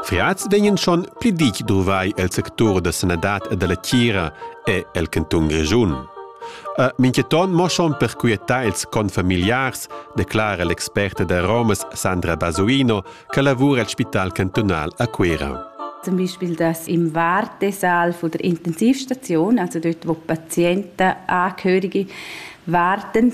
Feaz vegnan schon pli ditg druvai el sectur da sanadad e dalla tgira e el cantun Grischun. E minchaton mo schon per quietar ils confamiliars, declara l'experta da Romas Sandra Basuino, che lavura al Spital cantunal a Cuira. Zum Beispiel das im Wartesaal von der Intensivstation, also dort, wo Patienten, Angehörige warten,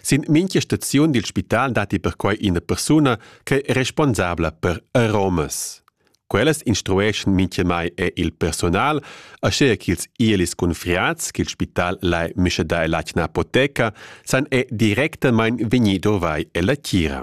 Sin mincha staziun dil spital datti perquai ina persuna che è responsabla per aromas. Quellas instrueschan mintgamai er il personal, aschia ch'ils ielis cunfriats ch'il spital lai mischedar ell'atgna apoteca san è directamain vegnì dovai ella tgira.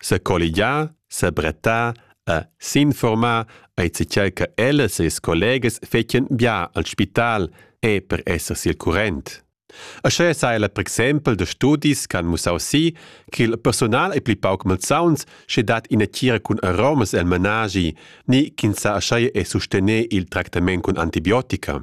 secolligiar, sebrettar e s'informar ei tgei che ellas e ils collegas fetien bia al spital e per esser sil current. Aschia sa ella per exempel da studis che han mussau si che il personal ei pli pauc malsauns sche dat ina tgira cun aromas el menagi ni ch'ins sa aschia e sustener il tractament cun antibiotica.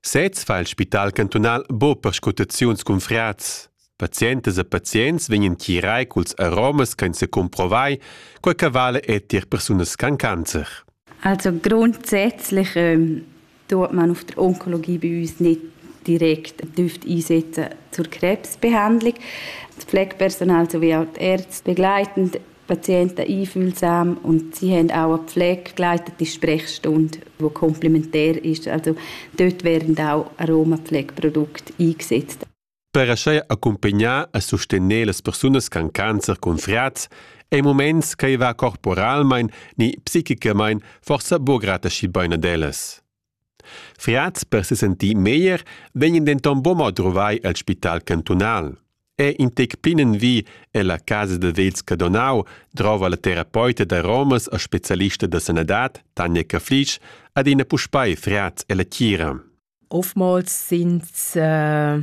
Sez fa il spital cantunal bo perscrutaziuns cun frats. Pazientas e pazients vegnan tirai culs aromas ch'ein secumprovai, quei che vale è tier persunas con cancer. Also grundsätzlich ähm, tut man auf der Onkologie bei uns nicht direkt einsetzen zur Krebsbehandlung. Das Pflegepersonal sowie auch die Ärzte begleitend Patienten einfühlsam und sie haben auch eine Pflege begleitet, die Sprechstunde, die komplementär ist. Also dort werden auch Aromapflegeprodukte eingesetzt. Per aschi accumpagnar e sostener las persunas con cancer cun friats ei moments che va corporalmein ni psichicamain forsa buca grata schi bein ad ellas. Fiats per sesentir meglier vegn denton buca druvai el spital cantunal. È in tec plinenvi ella casa da vegls Cadonau drova la terapeuta da Romas e specialista da sanadad Tanja Caflic adina puspei Fiats ella tgira. Oftmals sind äh,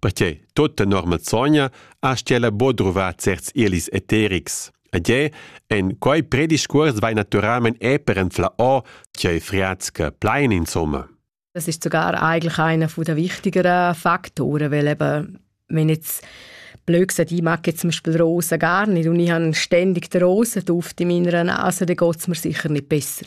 Perche tut tenor malsogna astga ella bod druvar certs elis eterics. Ed è en quei prediscuors vai naturalmein è per enfla o che friatska plein insomma. Das ist sogar eigentlich einer der wichtigeren Faktoren, weil eben wenn jetzt blöd gesagt, ich mag jetzt zum Beispiel Rosen gar nicht und ich habe ständig die Rosen drauf in meiner Nase, dann geht es mir sicher nicht besser.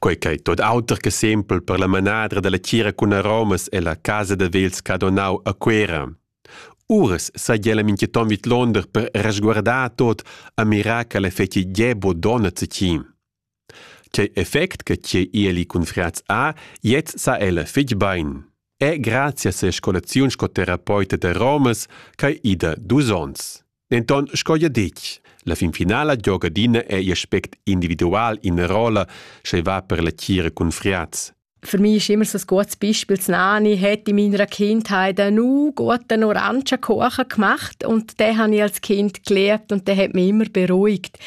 Quei ch'ei tot auter che sempel per la manadra dalla tgira cun aromas ella casa da vels Cadonau a Cuera. Uras sai ella mincheton vidlonder per resguardar tot a mirar che l'effecti gie bodona zecin. Quei effect che tgei ieli cun friaz ha, jetzt sa ella fitg bein. È grazie a ses colaziun sco terapeuta da aromas ch'ei ida dus onns. Denton sco jeu detg, la fin finala gioga adina ei aspect individual ina rolla, sche va per la tgira cun friaz. Für mich ist immer so ein gutes Beispiel, das Nani hat in meiner Kindheit einen guten Orangenkuchen gemacht und den habe ich als Kind gelernt und der hat mich immer beruhigt.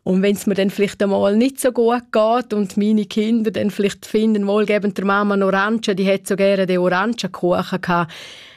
Und wenn es mir dann vielleicht einmal nicht so gut geht und meine Kinder dann vielleicht finden, wohlgebend der Mama einen Orangen, die hat so gerne den Orangenkuchen gehabt,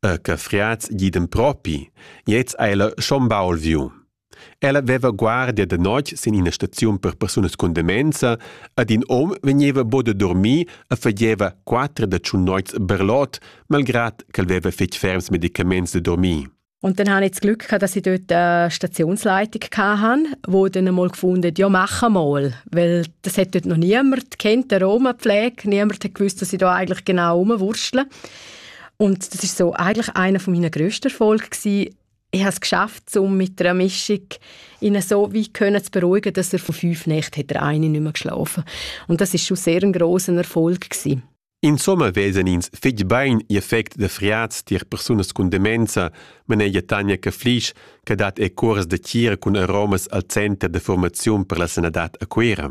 E che friats giden propi, gliez ha ella schon baul viu. Ella veva guardia da notg sin ina staziun per persunas cun demenza ed in hom vegneva bod a dormir e fageva quatter da tschun noits berlot, malgrad ch'el veva fetg ferms medicaments da dormir. Und dann habe ich das Glück gehabt, dass ich dort eine Stationsleitung hatte, wo dann einmal gefunden ja, machen mal. Weil das hat dort noch niemand kennt, die Roma-Pflege. Niemand hat gewusst, dass ich da eigentlich genau rumwurstle. Und das ist so eigentlich einer von meinen grössten Erfolge gewesen. Ich habe es geschafft, um mit einer Mischung ihn so wie können zu beruhigen, dass er von fünf Nächten hat er eine nicht mehr geschlafen. Und das ist schon sehr ein grosser Erfolg gewesen. In Sommer wesen ins fitg bein ihr effect de friaz tier persunas cun demenza, manegia Tanja Caflisch, che dat e curs de tira cun aromas al center de formaziun per la sanadad a Cuira.